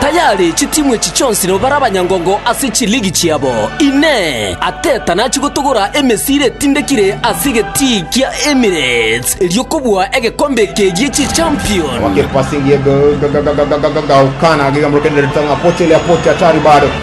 Tayari chitimu echi chionsi nigo bare abanyangongo ase chiligi chiabo. Inee! Arteta nachie gotogora emesiri etindekire ase egetii kia Emirates erio kobua egekombe eke gie Chichampion? Awake passing ye Gaukana, agigamborokereria Tanga, Pocho ile ya Pocho, hatari bado.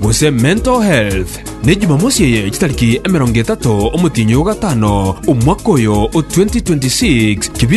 gose mental health, ne Jumamosi eye chitariki emerongo etato omotienyi o gatano omwaka oyo o 2026 kebiri